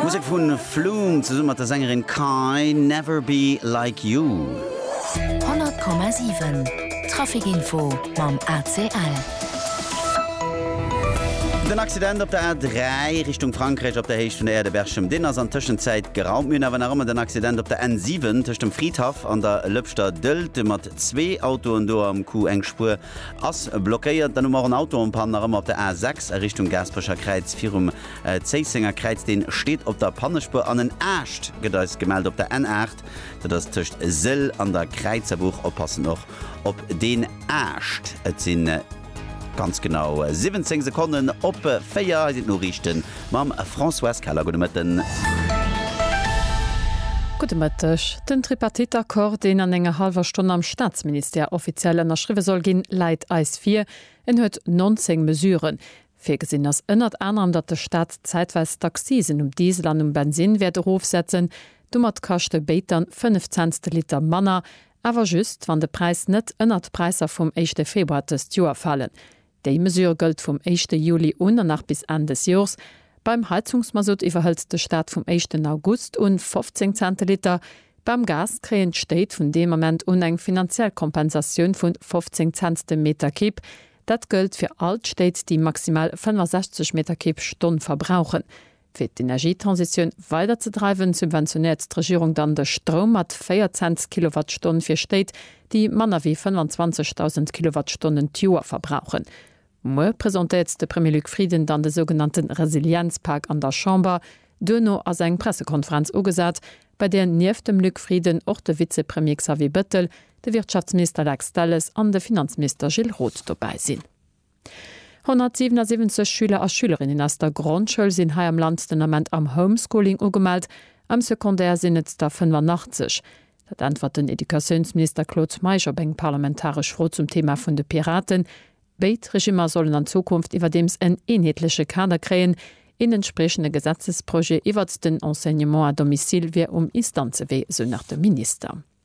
Musek vun Flume zesumme mat der Sängerin Kai, Never Be Like You. 100,7 Trafic Info mam ACL. Den Accident op der A3 Richtung Frankräich op der Héicht vun der Aire de Berchem, deen ass an Tëschenzäit geraumt. Mir hunn awer nach ëmmer den Accident op der N7 tëscht dem Fridhaff an der Lëpschter Dëllte mat zwee Autoen. Do am Coup eng Spuer Ass blockéiert, dann hu mer och en Auto en Panne nach ëmmer op der A6 a Richtung Gaasperecher Kräiz virum Zéissenger Kräiz. Deen steet op der Pannespuer an en Aascht gëtt eis gemellt op der N8. Dat ass tëscht Sëll an der Kräizerbuch. Oppassen och op deen Aascht. Et sinn ganz genau 17 Sekonnen op 4. Hei sinn d'Noriichten. Mam Françoise Keller, gudde Mëtten. Gudde Mëtteg. Den Tripartite-Accord, deen an enger hallwer Stonn am Staatsministère offiziell ënnerschriwwe soll ginn, läit eis vir. En huet 19 Mesuren. Virgesinn ass ënnert anerem, datt de Staat zäitweis d'Accisen um Diesel an um Bensinn wäert erofsetzen. Domat kascht e Béit dann 5 Cents de Liter manner, awer just, wann de Präis net ënnert d'Präisser vum éischte Februar dëst Joer falen. Déi Mesure gëllt vum éischte Juli un an nach bis Enn des Jors. Beim Heizungsmasutt iwwerhëlt de Staat vum éischten August un 15 Cent de Liter. Beim Gas kréien d'Stéit vun deem Ament un eng finanziell Kompensatioun vun 15 Cent de Meterkibb. Dat gëllt fir all d'Stéit, déi maximal 65 Meterkibb d'Stonn verbrauchen. Fir d'Energietransitioun weider ze dreiwen, subventionéiert d'Regierung dann de Stroum mat 4 Cents d'Kilowattstonn fir Stéit, déi manner wéi 25.000 Kilowattstonnen d'Joer verbrauchen. Muer presentéiert de Premier Luc Frieden dann de sougenannte Resilienzpak an der Chamber. Duerno ass eng Pressekonferenz ugesat, bei där nieft dem Luc Frieden och de Vizepremier Xavier Bettel, de Wirtschaftsminister Lex Delles an de Finanzminister Gilles Roth dobäi sinn. 177 Schüler a Schülerinnen aus der Grondschoul sinn hei am Land den Ament am Homeschooling ugemellt, am Secondaire sinn et der 85. Dat äntwert den Educatiounsminister Claude Meisch op eng parlamentaresch Fro zum Thema vun de Piraten. Béid Regimmer sollen an Zukunft iwwerdeems en eenheetleche Kader kréien. Een entspriechende Gesetzesprojet iwwert den Enseignement à domicile wier um Instanzewee, esou nach de Minister.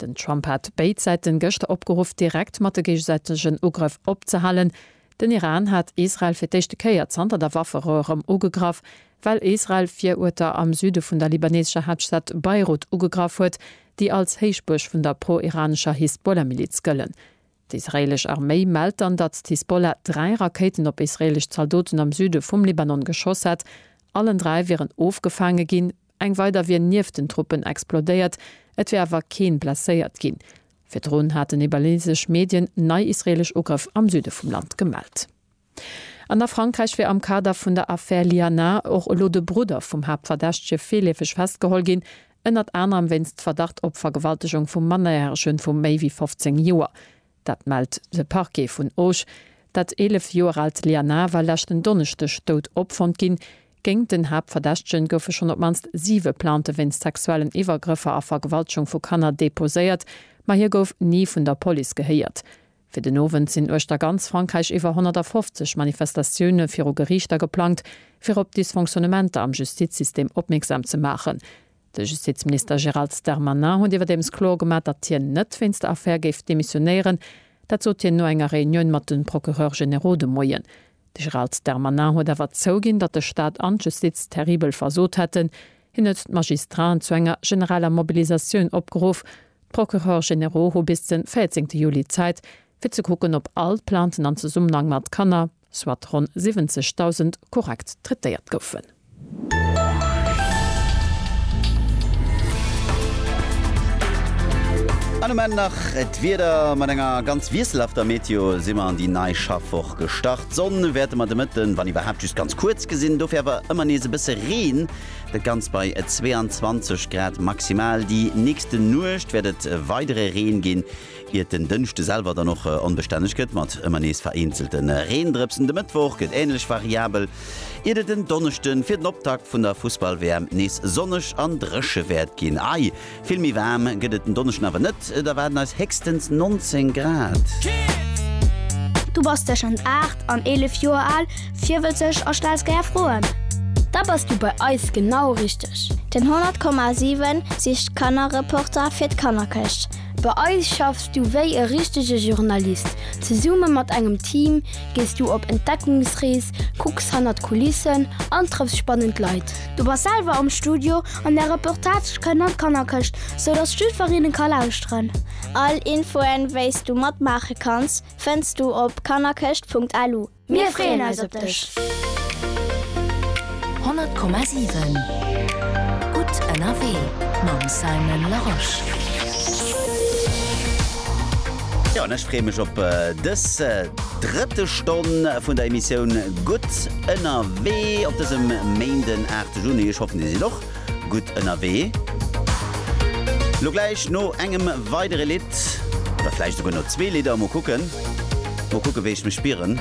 Den Trump hat béid Säiten gëschter opgeruff, direkt mat de géigesäitegen Ugrëff opzehalen. Den Iran hat Israel fir d'éischte Kéier zanter der Wafferou erëm ugegraff, well Israel virueter am Süde vun der libaneesescher Haaptstad Beirut ugegraff huet, déi als Héichbuerg vun der pro-iranescher Hisbollah-Miliz gëllen. D'israeelesch Arméi mellt dann, datt d'Hisbollah dräi Rakéiten op israeelesch Zaldoten am Süde vum Libanon geschoss hätt. Allen dräi wieren ofgefaange ginn. Eng weider wier nieft den Truppen explodéiert, et wier awer keen blesséiert ginn. Virdrun haten nepalesesch Medien nei israeelesch Ugrëff am Süde vum Land gemellt. An a Frankräich wier am Kader vun der Affär Liana och elo de Brudder vum Haaptverdächtege virleefeg festgeholl ginn, ënnert anerem wéinst Verdacht op Vergewaltegung vu Mannerjärege vu méi wéi 15 Joer. Dat mellt de Parquet vun Auch. Dat 11 Joer aalt Lianah war leschten Donneschdeg dout opfonnt ginn. Géingt den Haaptverdächtegen goufe schonn op d'mannst siwe Plainte wéinst sexuellen Iwwergrëffer a Vergewaltgung vu Kanner deposéiert, ma hie gouf ni vun der Police gehéiert. Fir den Owend sinn uechter ganz Frankräich iwwer 150 Manifestatioune viru Geriichter geplangt, fir op Dysfonctionnementer am Justizsystem opmierksam ze maachen. De Justizminister Gérald Darmanin huet iwwerdeems kloer gemaach, datt hien net wéinst der Affär géif demissionéieren. Dat sot hien no enger Reunioun mat de Procureurs généraux de Moien. De Gérald Darmanin huet awer zouginn, datt de Staat an d'Justiz terribel versot hätten. Hien huet d'Magistraten zu enger generaler Mobilisatioun opgeruff. D'Procureurs généraux hu bis de 14 Juli Zäit, fir ze kucken, ob all d'Plainten an Zesummenhang mat Kanner, soit ronn 70.000, korrekt traitéiert goufen. An um Enn nach d'Wieder, Mat enger ganz wiesselhafter Meteo si mer an déi nei Schaffwoch gestart. D'Sonn wäerte mer de Mëtten, wann iwwerhaapt, just ganz kuerz gesinn, dofir awer ëmmer nees e bësse Reen. Dat Ganzt bei 22 Grad maximal. Déi nächste Nuecht wäert et weidere Reen ginn. Iert den Dënschde selwer dann och onbestänneg gëtt mat ëmmer nees vereenzelte Reendrëpsen. De Mëttwoch gëtt änlech variabel, iert et en Donneschde fir den Optakt vun der Fussball-WM nees sonneg an dréche wäert ginn. Ei, vill méi waarm gëtt et den Donneschden awer net, et erwaarden eis héchstens 19 Grad. Du bass tëschent 8 an 11 Joer al, virwëtzeg a stells gär Froen? Da bass du bei eis genau richteg! Den 100,7 sicht Kannerreporter fir d'Kannerkëscht. Bei eis schaffs du wéi e richtege Journalist. Zesumme mat engem Team gees du op Entdeckungsrees, kucks hannert d'Kulissen an trëffs spannend Leit. Du bass selwer am Studio an där Reportage kënnt an d'Kannerkëscht, sou dass d'Stüferinnen ka lauschteren. All Infoen wéis du matmaache kanns fënns du op kannerkëscht.lu. Mir freeën eis op dech! 100,7 Gutt ënnerwee mam Simon Larosche. Jo, an ech freeë mech op dës drëtte Stonn vun der Emissioun Gutt ënnerwee op dësem Méinden 8 Juni. Ech hoffen, Dir sidd och. gutt ënnerwee. Lo gläich no engem weidere Lidd, oder vläicht esouguer no zwee Lidder, mol kucken, mol kucken, wéi ech mech spieren,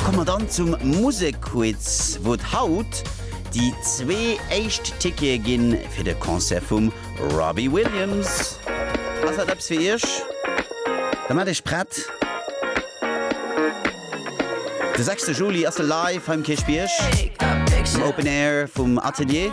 komme mer dann zum Musekquiz, wou et haut déi zwee éischt Tickete gi fir de Concert vum Robbie Williams. Ass dat eppes fir Iech? Da maacht Iech prett. De sechste Juli ass se live hei um Kierchbierg, am Open Air vum Atelier.